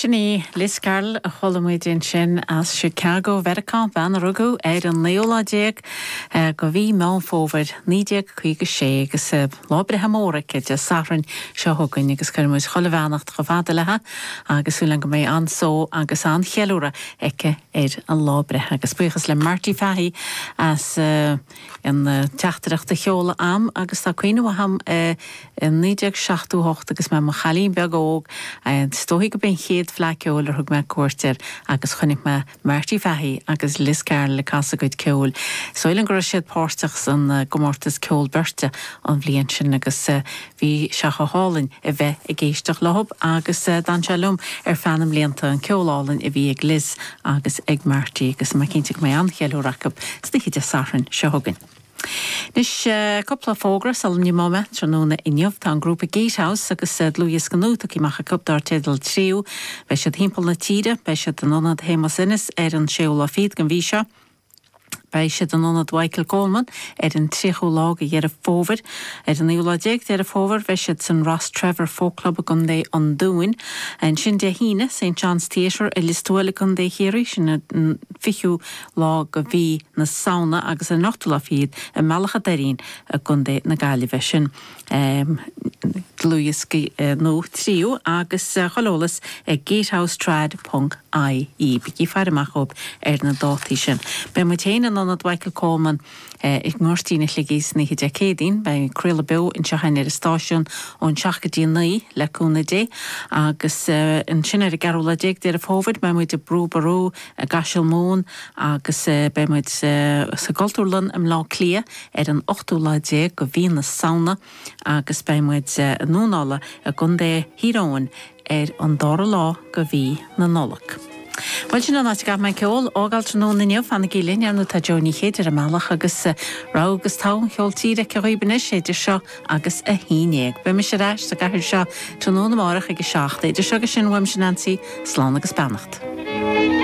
Sin í Liz Carroll a chuala muid ansin as Chicago Mheiriceá, bean a rugadh ar an naoú lá déag de mhí Meán Fómhair 1956 agus lá breithe mór aici Dé Sathairn seo chugainn agus cuireann muid chuile bheannacht chomh fada lei agus súil againn go mbeidh an-só agus an-cheiliúradh aici ar a lá breithe agus buíochas le Marty Fahy as an teachtaireacht a sheoladh a'm agus tá cuimhne mhaith a'm i 1978 agus mé i mo chailín beag óg is dóigh gurb é an chéad Fleadh Ceoil ar thug mé cuairt air agus chonaic mé Marty Fahy agus Liz Carroll ag casadh a gcuid ceoil. Is dóigh liom go raibh siad páirteach san gcomórtas ceol beirte an bhliain sin agus Bhí sé chomh hálainn a bheith ag éisteacht leo agus d'fhan sé liom ar feadh na mblianta, an ceol álainn a bhí ag Liz agus ag Marty agus tá mé cinnte go mbeidh an-cheiliúradh acu d'oíche Dé Sathairn seo chugainn. Anois, cúpla fógra sula n-imeoidh mé. Tráthnóna inniu, tá an grúpa Gatehouse agus dlúthdhiosca nua tugtha amach acu dár teideal Tríú. Beidh siad thimpeall na tíre, beidh siad in Ionad Shéamus Ennis ar an 6ú lá fichead den mhí seo, Beidh siad in ionad Mhichael Coleman ar an 3ú lá de Dheireadh Fómhair. Ar an 9ú lá déag Deireadh Fómhair bheidh siad san Rostrevor Folk Club i gContae an Dúin. Ansin Dé hAoine, St John's Theatre i Lios Tuathail i gContae Chiarraí, sin an 20ú lá de mhí na Samhna agus ar an 8ú lá fichead i mBealach a' Doirín i gContae na Gaillimhe, sin. dlúthdhiosca nua Tríú agus chuile eolas ag Gatehouse Trad. ie. Bígí ag faire amach dóibh ar na dátaí sin. Beidh muid féin in Ionad Mhichael Coleman i nGoirtín Shligigh san oíche Dé Céadaoin. Beidh craoladh beo anseo ar an stáisiún ón seacht go dtí a naoi, le cúnamh Dé, agus ansin ar an gceathrú lá déag Deireadh Fómhair beidh muid i Brú Ború i gCaiseal Mumhan agus beidh muid sa gCultúrlann i mBleá Cliath ar an ochtú lá déag go mhí na Samhna agus beidh muid i nDúnalla i gContae Thír Eoghain ar an dara lá go mhí na Nollag. Bhuel, sin an áit a gcaithfidh mé ceol a fhágáil tráthnóna inniu. Fanaigí linn, ar ndóigh, tá Jó Ní Chéide ar an mbealach agus rogha agus togha an cheoil tíre aici dhaoibh anois idir seo agus a haon dhéag. Beidh mise ar ais sa gcathaoir seo tráthnóna amárach ag a seacht, idir seo agus sin uaimse Neansaí, slán agus beannacht.